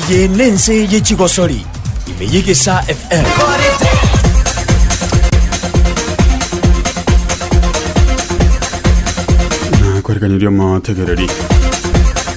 Eye nense ye chigosori, ime y'egesa FM. na kwerekaniria omotegereri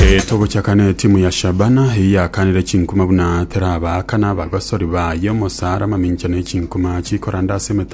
Eh, togochaka na etimu ya shabana eye yakanire chinkuma buna teraba kana abagosori baye omosaara mamincha ne chinkuma chikoranda ase emete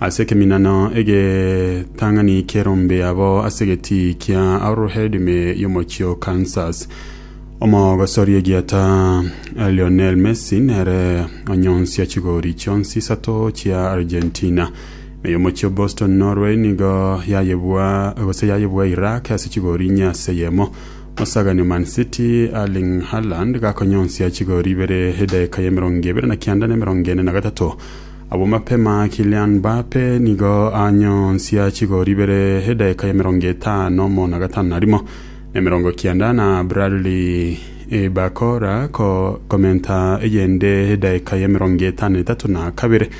Ase ekeminano egetang'ani ki'erombe abo ase egetii kia Arrowhead ime y'omochie o Kansas, omogosori egieta Lionel Messi nere onyonsia chigori chionsi isato chia Argentina. Ime y'omochie o Boston Norway nigo yayebua gose yayebua Iraq ase chigori inye ase eyemo, omosagani o Man City Erling Haaland gakonyonsia chigori ibere edaika y'emerongo ebere na kianda na emerongo ene na gatato. Abwo mapema Kylian Mbappe nigo anyonsia chigoro ibere edaika y'emerongo etano mo na gatano na rimo na emerongo kianda na Bradley Barcola ko komenta eyende edaika y'emerongo etano na etato na kabere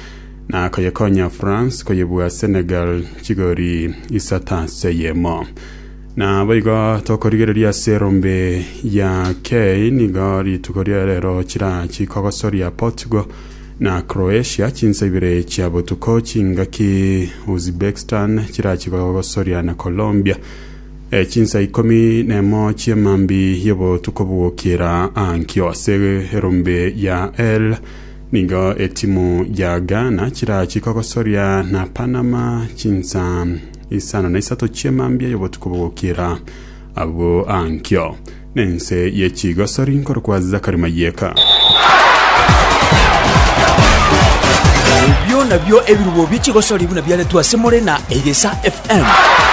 na koyekonya France koyebua Senegal chigori isato ase eyemo. Na boigo tokorigereria ase erombe ya Key nigo rituko ria rero chirachi kogosoria Portugal na Croatia, chinsa ibere chia botuko chingaki Uzbekistan chirachi gogosoria na Colombia, chinsa ikomi nemo chi'emambi y'obotuko bw'ogokiera ankio ase erombe ya El nigo etimu ya Ghana chirachi kogosoria na Panama chinsa isano na isato chi'emambia y'obotuko bw'ogokiera Agwo ankio nense ye chigosori nkorokwa Zakari Mayeka. Ebio nabio ebirubo bie chigosori buna biaretwe ase more na Egesa FM.